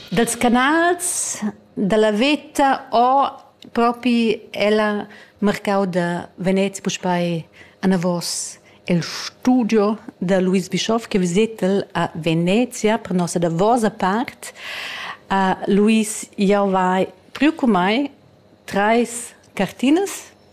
Dals canals da la veta ho propi ella marcau da Venez puspei anavos il studio da Luis Bischoff che visetel a Venezia per nossa davosa part. Uh, Luis, jau vai priu cun mei treis cartinas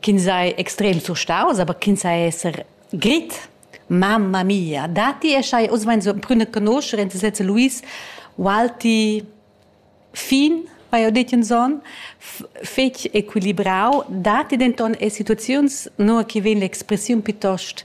ch'ins ei extrem surstaus, aber ch'ins ei esser grit. Mamma mia, dati e schai, oz mein so prüne conoscer in sezze Luis Walti fin vai ho detto in zon fetg equilibrau dati denton e situaziuns no che vegn l'expressiun piuttost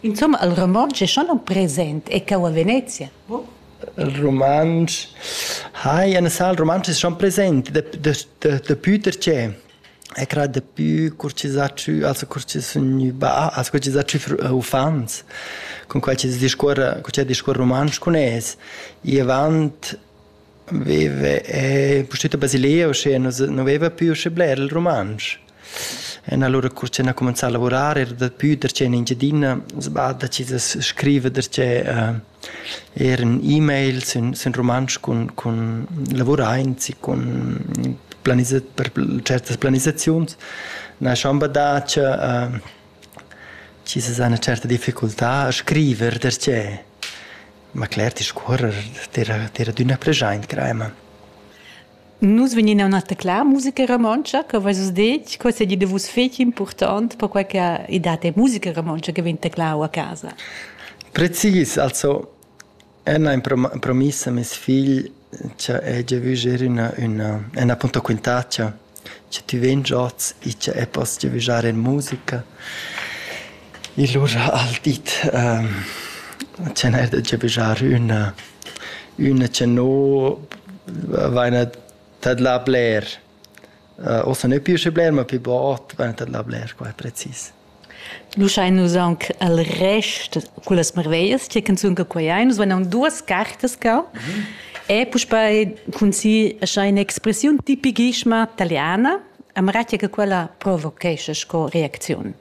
Insumma, il romontsch è schon aunc present e cau a Venezia. Il romontsch hai ein sal romontsch è schon present dapi pertgé è cra dapi cur chi s'ha tschü also cur chi sun gnü bah also cur chi s'ha tschü uffants cun quai chi discuorra cun chi discuorra rumantsch cun es. I avant veve e pustüt a Basilea uschè nu veva più uschè bler il rumantsch. En allura cur che ha cumenzà a lavurar era daplü der che in Engiadina, sba decidis scriver der che uh, er in e-mail sin, sin rumantsch cun, cun lavuraints e cun planizat per certas planisaziuns. Na schon badà che uh, ci se una certa difficoltà a scriver der che ma cler ti scorrer tira tira d'una pregiaint crema. Nus vegnin a üna tecla musica romontscha, co veis vus detg? Co seigi da vus fetg impurtont, perquai che i dat è musica romontscha che vegn teclau a casa? Precis, also ün ha promiss a meis figl cha hegia vü ger üna üna ün appunto quintaccia cha tü vegn oz e cha eu poss giavüschar in musica. I lur al di tg'el debgia bger üna üna cha no vaina tadlà bler. Ossa nö pü usché bler, ma pü bod vaina tadlà bler qua precis. Nu schain nus aunc al rest cullas marveglias tg'e canzun che quai ein. Nus vain aunc duos cartas cau e puspei cun si escha in'expressiun tipichissima taliana, amara tg'e che quella provochescha sco reacziun.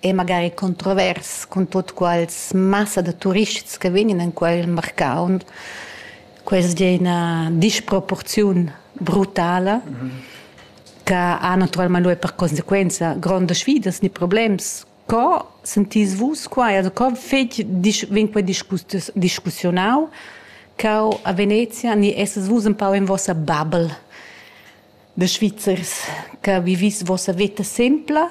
è magari controvers cun tut quals massa da turists che vegnan en quel marcau. Quest è una disproporziun brutala mm -hmm. che ha naturalmente lui per conseguenza grandi sfidas ni problems. Co sentís vos qua? Also, co fec vin quei discussionau cau a Venezia ni esses vus un pau in vossa bubble de Svizzers che vivis vossa vita simpla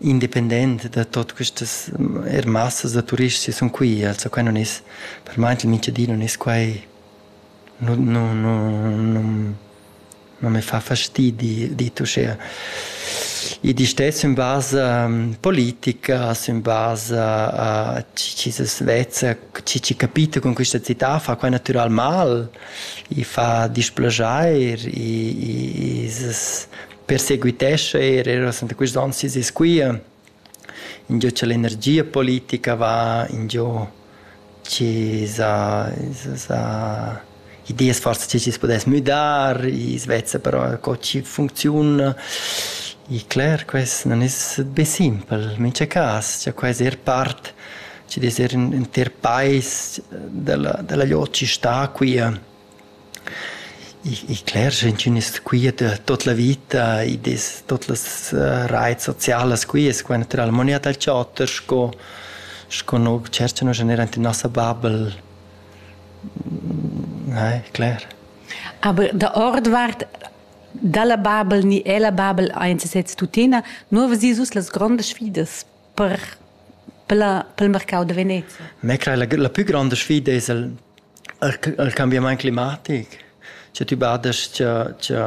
independent da tot questas er massas da turists sun qui, also qua non es per mai il Mincedin non es quai non non non non me fa fastidi dit uschea. Id istess in basa politica, in basa a chi se svezza, chi ci capita con questa città fa qua natural mal, i fa displaschair, i, i, i perseguitescha er era senta quist on sis e squia ingio cha l'energia politica va, ingio chi s'ha s'ha ideas forsa chi chi's pudess müdar, i's vezza però co chi funcziuna. I cler quest non es be simpel, mincha cas, cha quai es eir part chi'd es eir ün ünter pais della della gliot chi sta quia. Ich ich cler sch'in ch'ün es quiet tuot la vita, id es tuot las rais socialas quias, qua natüralmaing eir dal chatter sco sco no tscherchano generalmaing in nossa bubble. Naja, cler. Aber der Ordwart dalla bubble ni ella bubble aint sesez tuttina, nu ves sus las grondas sfidas. per pel, pel marcau da Venezia? Me crei la, la pü gronda sfida es il, il, il cambiamaint climatic. Scha tü badas cha, cha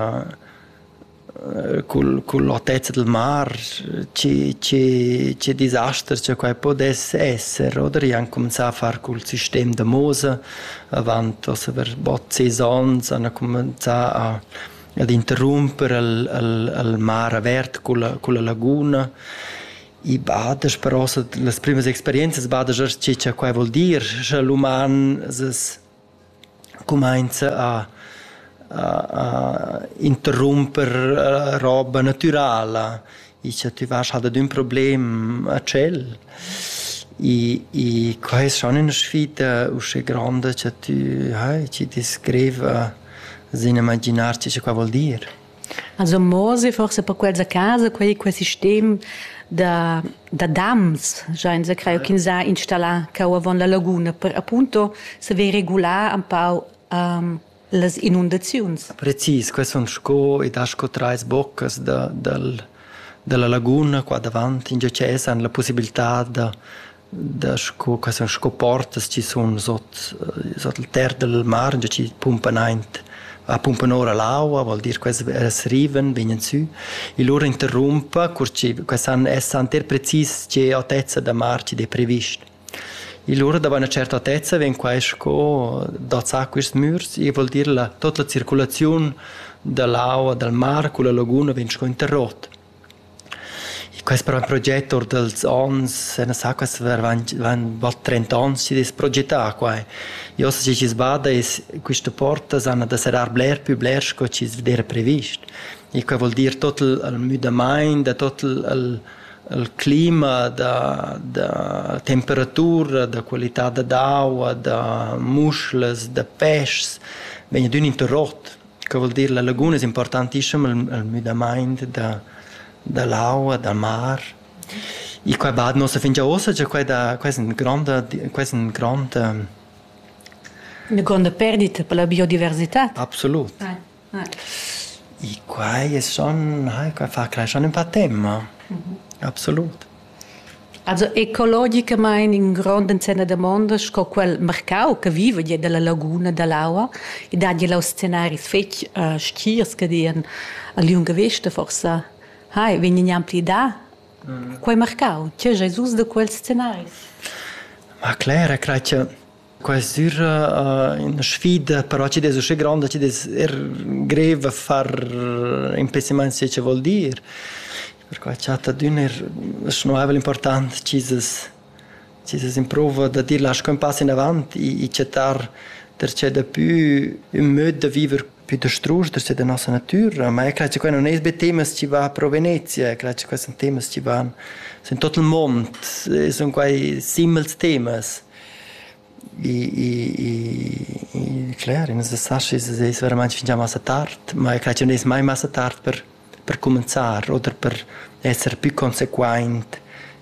eh, cul, cull'otezza del mar, ci, ci, ci disasters cha quai podess esser, oder? I han comenzà a far cul sistem da Mosa, avant ossa per bot saisons han comenzà a ad interrumper al, al, al mar avert culla, culla laguna. I bada però las primas experienzas bada già che cha quai vuol dir, scha l'uman es cumainza a a, a interrumper roba natürala Icha tü vasch halt ad ün problem a tschel. I i que es schon üna sfida usche gronda cha tü hai, chi ti scriva sin imaginar chi cha quai voul dir. Also mosi forse per quels a casa quei quel sistem da da dams giainsa creo ch'ins ha installà cau avon la laguna per appunto saver regular un pau um, las inundaziuns. Precis, quels sun sco ed ha sco trais boccas da, dal, dalla laguna qua davant in GCS han la possibilità da da sco quai sun sco portas chi sun sot sot il ter del mar già chi pumpan aint a pumpan ora l'aua, vuol dir quels els riven, vegnan sü e lura interrumpa, cur chi quels han essan ter precis che altezza da mar chi d'he previst. Igl ura da buna certatezza vegn quai sco dazzà quists mürs, i voul dir la tuot la circulaziun da l'aua dal mar culla laguna vegn sco interrot. Quest proget our dals ons na sa quas varvant van bot trenta ons chi'd es progetà quai. I hoz schi chi's bada es quista porta s'hana da serrar bler pü bler sco chi's d'eira previst. e quei vul dir tot il, il müdamaint, da tot il, il, il clima, da, da temperatura, da qualità da d'aua, da muschlas, da peschs, vegn ad ün interrot. Quei vul dir la laguna es importantissima il, il müdamaint da, da l'aua, da mar. E quei bad nossa fingia ossa, cioè quei da, quei è un gronda, quei è un grond, Eine grande Perdita per la biodiversità. absolut. I quai sun hai quai fa creeschan ün pa temma. Absolut. Also ecologicamaing ün grond ensem da damonda sco quel marcau che viva gia dalla laguna dall'aua e dat gia là scenaris fetg stgirs che dian a liunga vesta forsa hai vegn gnanpli dà. Quei marcau, tgei ais us da quels scenaris? Ma cler, e crai che Quai düra üna sfida, però chi'd es uschè gronda chi'd es er grev a far ün pessimaint schi cha vuol dir. Perquai chatta d'ün er schnuraivel important chi's es chi's es in prouva da dir lascha ün pass inavant e e chattar darcheu dapü ün möd da viver Pütastrus da sia da nossa natüra, ma io creo cha quai nun es be temas chi va pro Venezia, creo cha quai sun temas chi van sün tuot il mond, sun quai simils temas. I i i cler, i nu sa schi es es veramaint fingià massa tard, ma io creo cha nun es mai massa tard per per cumanzar oder per esser pü consequaint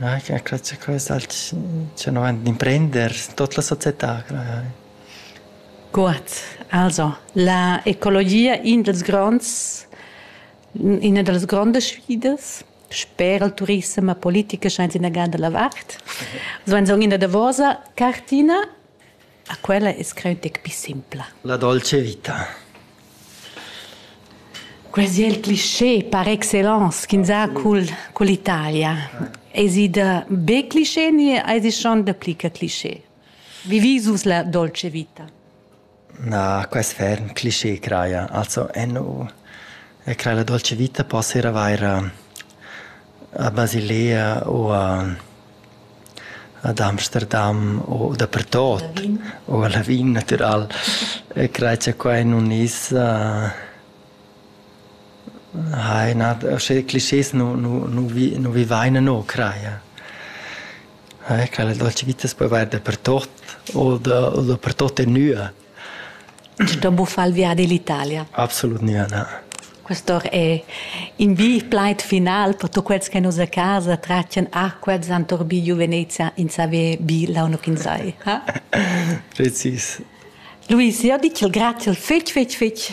Ah, sia clozza questa al tschernavant d'imprender tot la società craj. Guad, also la ecologia in dals gronds ina da las grondas sfidas sper il turissem e politica sainza inagada la vart. Uss vain sogn ina davosa cartina. A quella es creu deг pii simpla. La dolce vita. Quasi il cliché par excellence ch'ins ha cul, cul Italia. Esi da be cliché ni esi schon da pli che cliché? Vivi sus la dolce vita? Na, quest ferm cliché craia. Also, eno, e crai la dolce vita possa ir a vair a, a Basilea o a, ad Amsterdam u dapertot u a Lavin natural e crei cha quai nun es hai na sche clischés nu nu nu vi nu vivaina no craja. Quella dolce vita s'po vair dapertot o da o dapertot e nua. da buffar il viadi l'Italia. Absolut nie, na. Questo è in bi plaid final per tutti quelli che nus a casa traccian a quels han torbiglio Venezia in sape bi la uno che sai. Precis. Luis, io dico grazie fetch fetch fetch.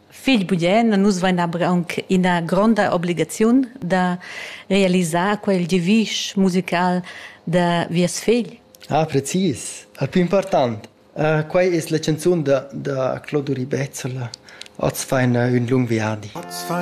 figl bugen, nus vein aber aunc ina gronda obligaziun da realisar quel devisch musical da vies figl. Ah, precis. Il più important. Uh, quei es la canzun da, da Claudio Ribezzola. Oz fain uh, un lung viadi.